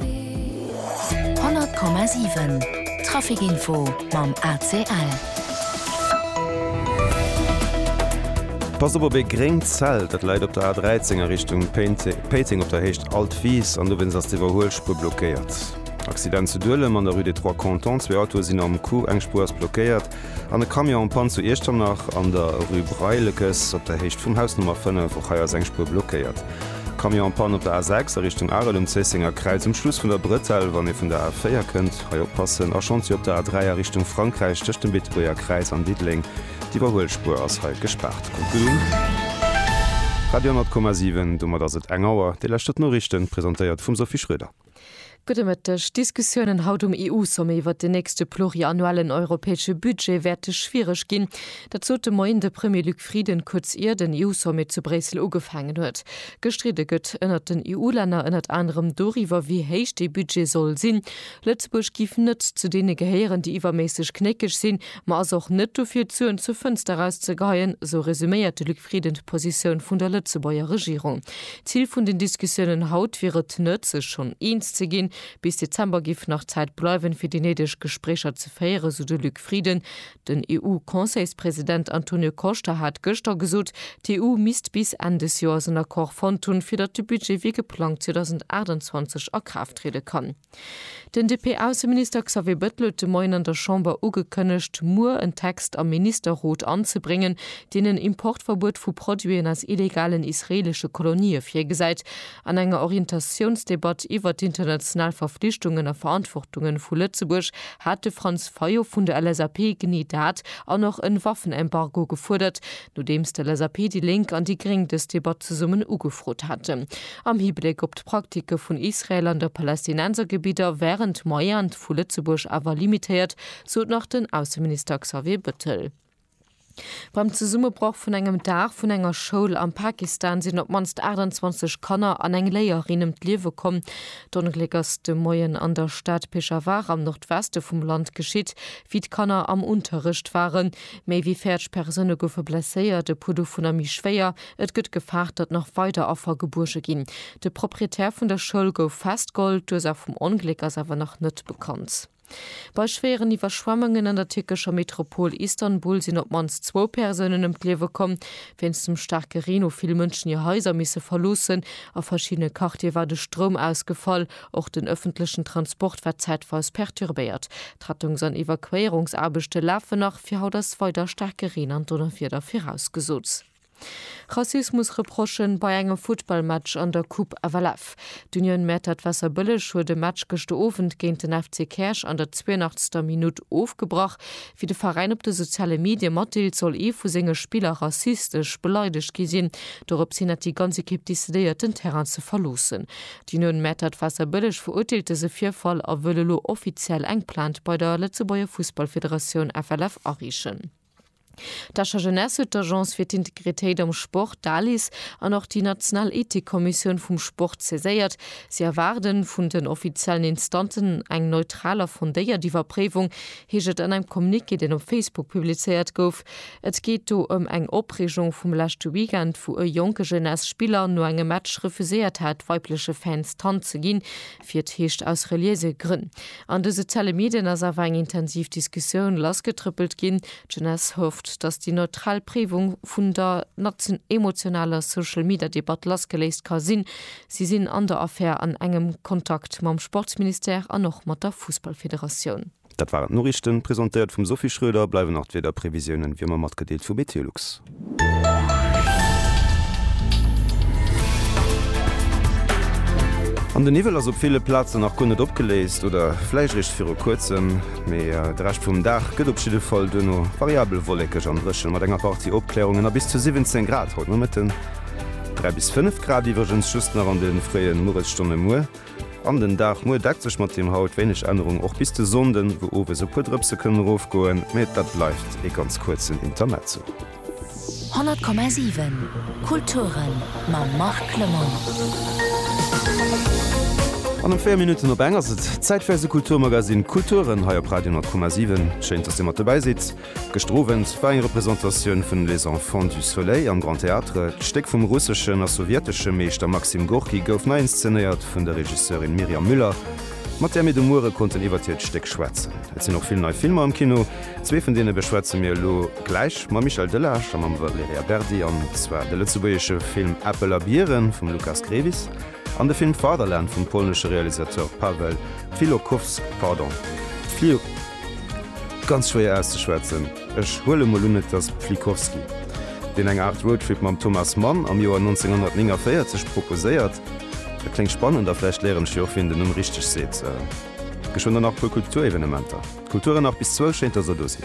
100,7 Trafic Info mam ACL. Passt op op ee gréngt Zelt, dat läit op der A13 a Richtung Péiteng op der Héicht Alt Wiis an dowéinst ass d'Iwwerhuelspuer blockéiert. Accident zu Duelem an der Rue des Trois Cantons, zwee Autoe sinn am Coup, eng Spuer ass blockéiert. An e Camion am Panne zu Iechternach an der Rue Breilekes op der Héicht vum Haus Nummer 5. Och hei ass eng Spuer blockéiert. Camion am Panne op der A6 a Richtung Arel um Zéissenger Kräiz um Schluss vun der Bretelle wann ee vun der A4 kënnt. Hei oppassen. A Chantier op der A3 a Richtung Frankräich tëscht dem Beetebuerger Kräiz an Diddeleng. D'Iwwerhuelspuer ass hei gespaart. Radio 100,7, domat ass et eng Auer. Déi leschte Noriichten, presentéiert vum Sophie Schroeder. Gudde Mëtteg. D'Diskussiounen haut um EU-Sommet iwwert den nächste pluriannuellen europäesche Budget wäerte schwiereg ginn. Dat sot de Moien de Premier Luc Frieden, kuerz ier den EU-Sommet zu Bréissel ugefaangen huet. Gestridde gëtt ënnert den EU-Länner ënnert anerem doriwwer, wéi héich dee Budget soll sinn. Lëtzebuerg géif net zu deene gehéieren, déi iwwerméisseg knéckeg sinn, ma ass och net dofir, d'Suen zur Fënster erauszegeheien, esou resuméiert de Luc Zefridden d'Positioun vun der Lëtzebuerger Regierung. D'Zil vun den Diskussiounen haut wier et net, sech schonn eens ze ginn. Bis Dezember géif nach Zäit bleiwen, fir déi néideg Gespréicher ze féieren, esou de Luc Frieden. Den EU-Conseilspresident Antonio Costa hat gëschter gesot, d'EU misst bis Enn des Joers en Accord fonnt hunn, fir datt de Budget wéi geplangt 2028 a Kraaft triede kann. Den DP-Ausseminister Xavier Bettel huet de Moien an der Chamber ugekënnegt, muer en Text am Ministerrot anzebréngen, deen en Importverbuet vu Produiten aus illegalen israeelesche Kolonië virgesäit, an enger Orientatiounsdebatt iwwert d'international Verflichtungen a Verantwortungen vu Lëtzebuerg hat de Franz Fayot vun der LSAP genee dat an och en Waffenembargo gefuerdert, Nodeems de LSAP, déi Lénk an déi Gréng dës Debatt zesummen ugefrot haten, am Hibléck op d'Praktike vun Israel an der Palästinensergebidder, wären d'Moyent vu Lëtzebuerg awer limitéiert, sot nach den Ausseminister Xavier Bëttel. Beim Zesummebroch vun engem Daach vun enger Schoul am Pakistan sinn op d'mannst 28 Kanner an eng Léierin ëm d'Liewe komm. D'Ongléck ass de Moien an der Stad Peshawar am Nordweste vum Land geschitt, wéi d'Kanner am Unterrecht waren. Méi wéi 40 Persoune goufe blesséiert, e puer dovunner méi schwéier. Et gëtt gefaart, datt nach weider Affer gebuerge ginn. De Proprietär vun der Schoul gouf festgeholl, d'Ursaach vum Ongléck ass awer nach net bekannt. Bei schwéieren Iwwerschwemmungen an der tierkescher Metropol Istanbul sinn op d'mannst zwou Persounen ëm d'Liewe komm. Wéinst dem staarke Reen hu vill Mënschen hir Haiser misse verloossen. A verschiddene Quartiere war de Stroum ausgefall. Och den ëffentlechen Transport war zäitweis perturbéiert. D'Rettungs an Evakuéierungsaarbechte lafen nach, fir haut ass weider staarke Reen an Donnerwieder virausgesot. Rassismus-Reprochen bei engem Futtballmatch an der Coupe FLF. D'Union Mäertert Wasserbëlleg huet e Match gëschte Owend géint den FC Käerch an der 82. Minutt ofgebrach. Wéi de Veräin op de soziale Medie matdeelt, soll ee vu senge Spiller rassistesch beleidegt gi sinn. Dorops hin hätt déi ganz Ekipp decidéiert, den Terrain ze verloossen. Déi no den Mäertert Wasserbëlleg verurteelt dëse Virfall a wëll elo offiziell eng Plainte bei der Lëtzebuerger Fussballfederatioun, FLF, areechen. D'Escher Jeunesse huet d'Agence fir d'Integritéit am Sport, d'ALIS, an och déi national Ethikkommissioun vum Sport saiséiert. Si erwaarde vun den offiziellen Instanzen eng neutral a fondéiert Iwwerpréiwung, heescht et an engem Communiqué, deen op Facebook publizéiert gouf. Et geet do ëm eng Opreegung vum leschte Weekend, wou e jonke Jeunesse Spiller no engem Match refuséiert hat, weibleche Fans d'Hand ze ginn, wéi et heescht, aus reliéise Grënn. An de soziale Medien ass awer eng intensiv Diskussioun lassgetrëppelt ginn. D'Jeunesse hofft, datt déi neutral Préiwung vun der emotionaler Social-Media-Debatt lassgeléist ka sinn. Si sinn an der Affär an engem Kontakt mam Sportsministère an och mat der Fussballfederatioun. Dat waren d'Noriichten, presentéiert vum Sophie Schröder. Bleiwen nach d'Wiederprevisiounen, wéi ëmmer matgedeelt, vu Meteolux. An den Niwwel ass op ville Plazen nach guer net opgeléist oder vläicht eréischt viru kuerzem. Mee de Rescht vum Dag gëtt op jidde Fall duerno variabel wollekeg an dréchen, mat enger Partie Opkläerungen a bis zu 17 Grad haut Nomëtten, 3 bis 5 Grad iwwregens just nach an de fréie Mueresstonne muer. An den Dag muer deckt sech mat deem haut, wéineg Ännerung och bis de Sonnden, wou owes e puer Drëpse kënnen erofgoen, mee dat bleift ee ganz kuerzen Intermezzo. 100,7 Kulturen mam Marc Clement. An um 4 Minutten op eng ass et Zäit fir eise Kulturmagazine Kulturen hei op Radio 10,7. Schéin, dass Dir mat dobäi sidd. Gëschter Owend war eng Representatioun vun Les Enfants du Soleil am Grand Théâtre. D'Stéck vum russeschen a sowjetesche Meeschter Maxim Gorki gouf nei inszenéiert vun der Regisseurin Mirjam Müller, mat där mir de Muere konnten iwwert hiert Stéck schwätzen. Et sinn och vill nei Filmer am Kino. Zwee vun deene beschwätze mir elo gläich mam Michel Delage a mam Valerija Berdi, an zwar de lëtzebuergesche Film Äppel a Bieren vum Lukas Grewis An de Film Fatherland vum polnesche Realisateur Paweł Filokowsk, pardon, Fli, ganz schwéier auszeschwätzen, ech huele mol un et ass Pflikowski, deen eng Aart Roadtrip mam Thomas Mann am Joer 1949 proposéiert, dat kléngt spannend a vläicht léieren ech jo och wéi een den Numm richteg seet, geschwënn der nach puer Kulturevenementer, d'Kulturen nach bis zwou, schéint dass der do sidd.